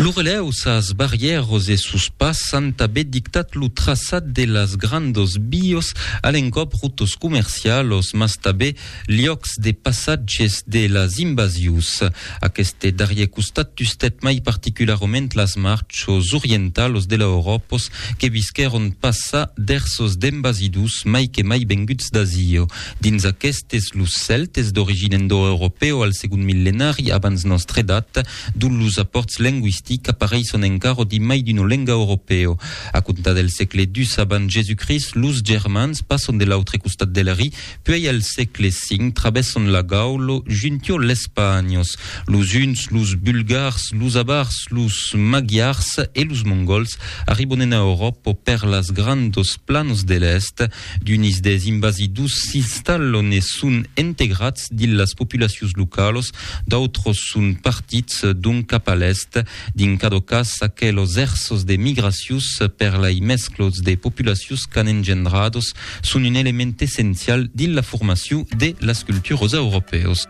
Lo relèu sas barrièros e sos pas an tabé dictat lo traçat de las grandos vios, a l'encòp rotos comercialos, mas tabé liòcs de passatges de las invasius. Aqueste darrier costat tustèt mai particularament las marchos orientalos de l'Euròpos que visquèron passar ders sos dembasidus mai que mai venguts d'Azio. Dins aquestes, los Cèltes, d'origina indoeuropèo al segond millenari abans nòstra edat, dont los apòrts lengüistics apareisson encara dimai d'una lenga europèo. A comptar del sègle ii abans Jesucrist, los Germans passon de l'autre costat del Ri, puèi al sègle V travèsson la Gaula juntiò l'espanhòs, los Huns, los Bulgars, los Avars, los Magyars e los Mongòls arribon ena Euròpa per las grandos planos de l'Èst, D'unis des invasidus s'installon e son integrats dins las populacions localos, d'autros son partits d'ont cap a l'èst. Dins cada cas, aquelos èrsos de migracions per lai mesclots de populacions qu'an engendrados son un element essencial dins la formacion de las culturas europèos.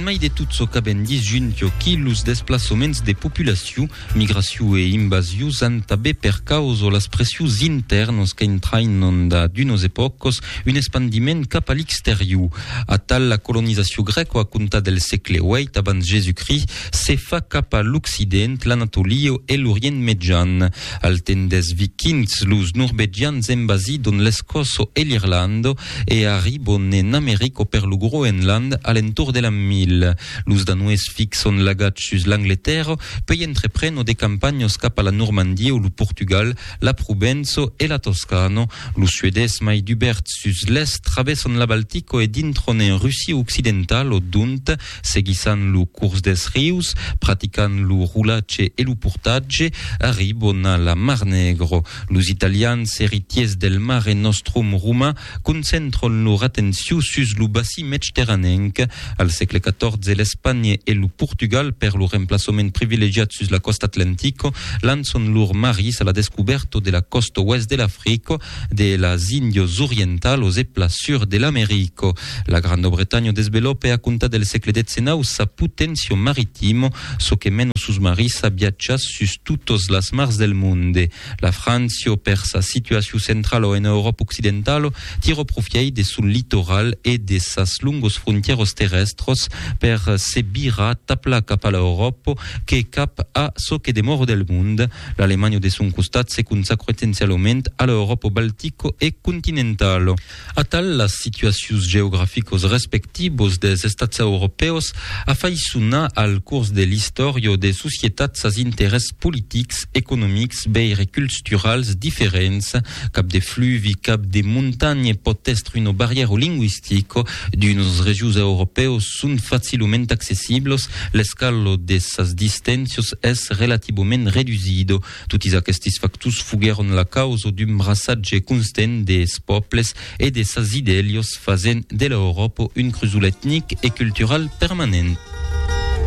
mai de tot çò qu'aben dit Juntio qui los desplaçaments de populacion, migracion e invasion an tabé per causa las pressions internas qu'entrainan da d'unos epòcas un expandiment cap a l'exterior. A tal la colonizacion grèca a comptar del sègle 8 abans Jésus-Christ Se fa cap a l'occident, l'Anatolio e l'Orient Mejan. Al temps des Vikings, los Norvegians envasidon l'Escòço e l'Irlanda e arribon en Americo per lo Groenland a l'entorn de l'an 1000. Los Danois fixon l'agatz sus l'Angletèrra, puèi entrepreno de campanhas cap a la Normandia o lo Portugal, la Provença e la Toscana. Los Suedés, mai dubèrts sus l'èst, travèson la Baltica e dintron en Russia occidentala, d'ont Seguissant lo curs dels rius, praticant lo rolatge e lo portatge, arribon a la Mar Negro. Los Italians, eritiers del Mare Nostrum roman, concentron lor atenciu sus lo bací mecteranenc. Al sègle XIV, l'Espanha e lo Portugal, per lor emplaçament privilegiat sus la còsta atlantica, lançon lors maris a la descubèrta de la còsta oèst de l'Africa, de las Índias Orientalas e plan sur de l'America. La Grandobretanha desvelòpe a comptar del sègle xix sa poténcia maritima, çò que mena sos marís a viatjar sus totas las mars del monde. La Frància, per sa situacion centrala ena Euròpa occidentala, tirò profièit de son litoral e de sas longos frontièras terrèstras per se virar tabla cap a l'Euròpa que cap a çò que demòra del monde. L'Alemanha de son costat se consacrò essencialament a l'Euròpa baltica e continentala. Atal, las situacions geograficos respectivos des estats europèus a fait sonar al curs de l'istòria de societats as interès politics, economics, veire culsturals diferents, cap de fluvi, cap de montanha pòt èstre una barrièra lingüistica, d'unes regions europèus son facilament accessiblos, l'escala de sas distensions es relativament redusido. Totis aquestes factors foguèron la causa d'un braçatge constent des pòbles e de sas idèlios, fasent de l'Euròpa un crusol etnic e cultural permanent.